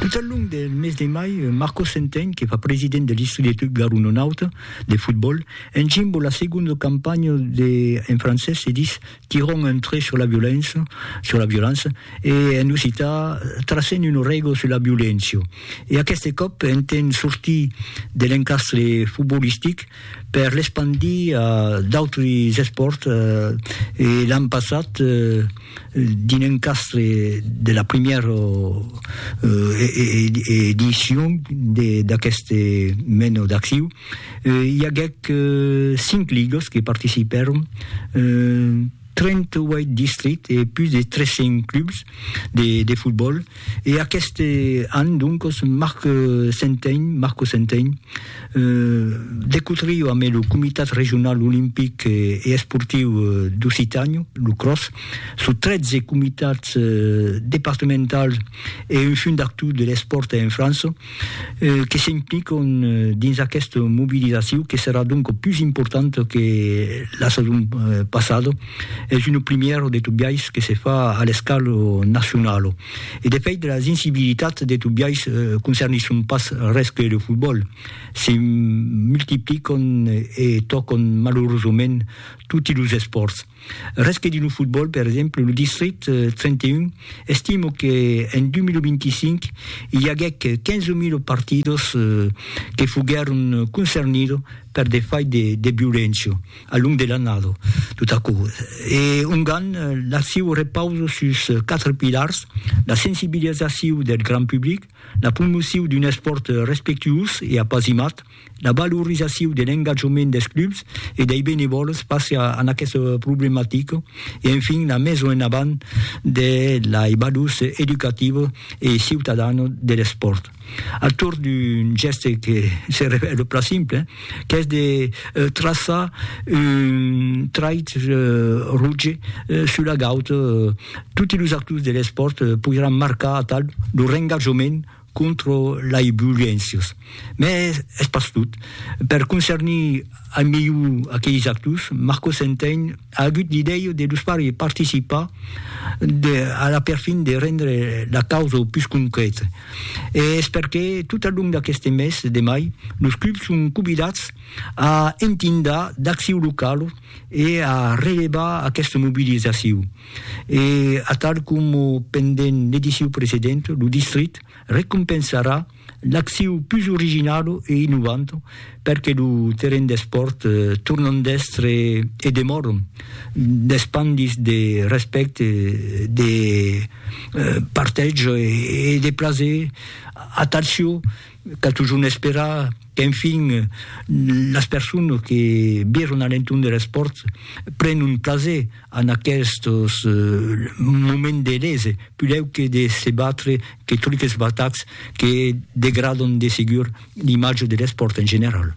Tot al long del mes de mai, Marco Centeny, que fa president de l'Istudiatiu Garononaut de fotbòl, encimbo la segonda campanha de, en francés se ditz Tirons un trait sur la violéncia, sur la violança, e en occità Tracem una règa sur la violéncia. E aqueste còp, entent sortir de l'encastre fotbolistic, per l'espandir a d'autres espòrts e l'an passat dins un castre de la primièra edicion d'aqueste menor d'acciu i aguèt cinc ligas que participèron 38 districts e pus de 300 clubs de fotbòl e aqueste an doncos Marc Centein, Marco Centein, de cotrio ambe lo Comitat Regional Olimpic e Esportiu d'Occitània, lo CROS, sus 13 comitats departamentals e un fundactor de l'espòrt en França, que s'impliquon dins aquesta mobilizacion que serà donc pus importanta que la sason passada, es una primièra de tot biais que se fa a l'escala nacionala. E de fait las incibilitats de tot biais concernisson pas res que lo fotbòl, se multipliquon e tòcon malurosament toti los espòrts. Res que dins lo fotbòl, per exemple, lo distrit 31 estimo que en 2025 i aguèc 15.000 partidos que foguèron concernidos per de fai de, de violéncia al long de l'annada, tot aquò. E ongan l'acciu repausa sus 4 pilars, la sensibilizaciu del grand public, la promociu d'un espòrt respectuós e apasimat, La valorizacion de l'engatjament dels clubs e dei benevòls face a aquesta problematica e enfin la meson en avant de lei valors educativa e ciutadana de l'espòrt a torn d'un gèste que se revèla plan simple qu'es de traçar un trait roge sus la gauta toti los actors de l'espòrt poiràn marcar atal lor engatjament contra lei violéncias, mès es pas tot. Per concernir al melhor aqueis actors, Marcos Entein a agut l'idèia de los far participar de, a la perfin de rendre la causa au pus concrèta. E es perqué, tot al long d'aqueste mes de mai, los clubs son convidats a entindar d'acciu locala e a relevar aquesta mobilizaciu. E atal coma pendent l'ediciu precedent, lo distrit recompensarà l'acciu pus originala e innovanta perque lo terren d'espòrt tornan d'èstre e demòran d'espandis de respècte, de partètge e de plaser atal sieu. Cal totjorn esperar qu'enfin las personas que viron a l'entorn der espòrt pren un plaser en aquestos moments de lese, pudèu que de se batre que tot es batats que degradon de segur l'imatge der espòrt en general.